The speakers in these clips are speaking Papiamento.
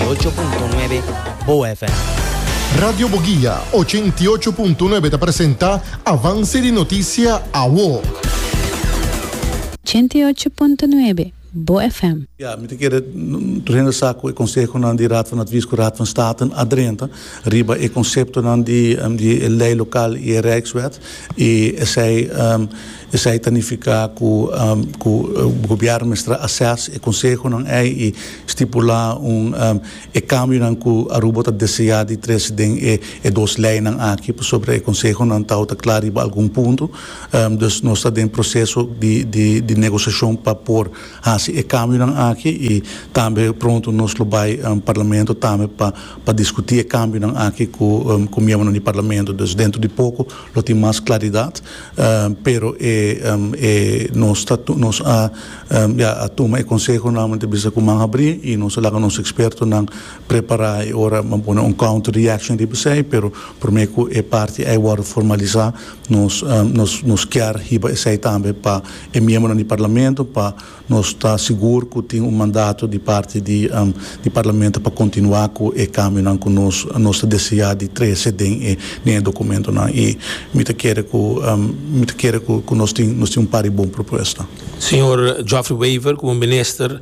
i ocho punto nuebe Boa FM. Radio Boguia ochenta i ocho punto nuebe ta presenta Avance di Noticia Awo. Ochenta i ocho punto nuebe Boa FM. Ya, mi ta kere renda sa ku e konsehonan di Raad van Advies ku Raad van Staten a drenta riba e konseptonan di e lei lokal i e Rijkswet i esei Esei ta nifiká ku ku gobièrnu mester a assès e konsehonan ei i stipulá un e kambionan ku Aruba ta deseá di trese den e e dos leinan aki pasobra e konsehonan tau ta kla riba algun punto. Dus nos ta den proseso di di di negosiashon pa por hasi e kambionan aki i tambe pronto nos lo bai Parlamento tambe pa pa diskutí e kambionan aki ku ku miembronan di Parlamento. Dus dentro di poko lo tin mas klaridat. Pero e nos ta nos a ya a tuma e consehonan ta bisa cu man habri y nos a laga nos expertonan prepara e ora a pone un counter reaction riba esey pero prome cu e parti ey wordo formalisa nos nos kier hiba esey tambe pa e miembronan di Parlamento pa Nos ta sigur cu tin un mandato di parti di di Parlamento pa continua cu e cambionan cu nos nos ta desea di trece den e den e documentonan y mi ta kere cu mi ta kere cu cu nos tin nos tin un par di bon propuesta. Señor Geoffrey Wever como Minister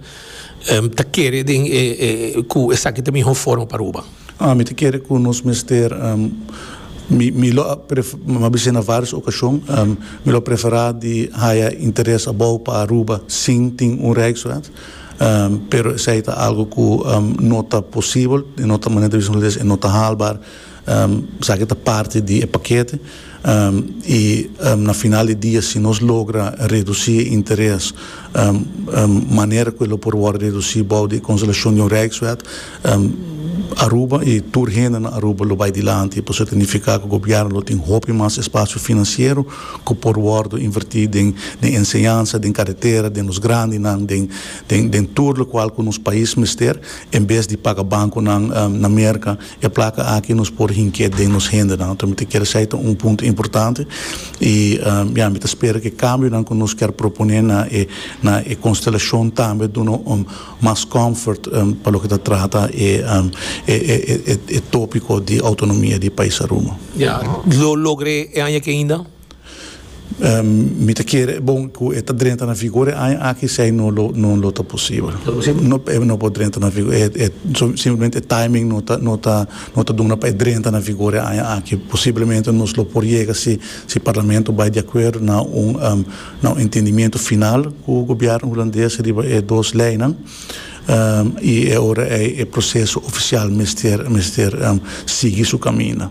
ta kere den e e cu esaki ta miho forma pa Aruba. Ah, mi ta kere ku nos mester, mi mi lo a prefera, bisai na vários okashon, mi lo a preferá di haya interes abou pa Aruba sin tin un Rijksraad, pero esei ta algu ku no ta posibel, no ta manera di bisa nos e no ta haalbaar, esaki ta parti di e pakete. I na final di dia si nos logra redusi e interes manera ku e lo por wòrdu redusi bou di e konselashon di un rijkswet, Aruba i tur hende na Aruba lo bai dilanti. Pasobra ta nifiká ku gobièrnu lo tin hopi mas espasio finansiero ku por wòrdu invertí den enseñansa, den karetera, den los grandinan, den tur lokual ku nos pais mester en bes di paga bankunan na Merka. E plaka aki nos por hink'é den nos hendenan. Nos ta mester kere esei ta un punto importante i ya mi ta spera ku e kambionan ku nos ker proponé na e na e konstelashon tambe duna un mas comfort pa loke ta trata e e e tópiko di outonomia di pais Aruba. Lo logr'é e aña aki ainda? Mi ta kere e bon ku e ta drenta na vigor e aña aki esei no lo no lo ta posibel. No posibel? No e no por drenta na vigor e simplemente e timing no ta no ta no ta duna pa e drenta na vigor e aña aki posiblemente nos lo por yega si si parlamento bai di akuerdo na un na un entendimiento final ku gobièrnu hulandes riba e dos leinan i e ora ei e proseso ofisial mester mester sigui su kaminda.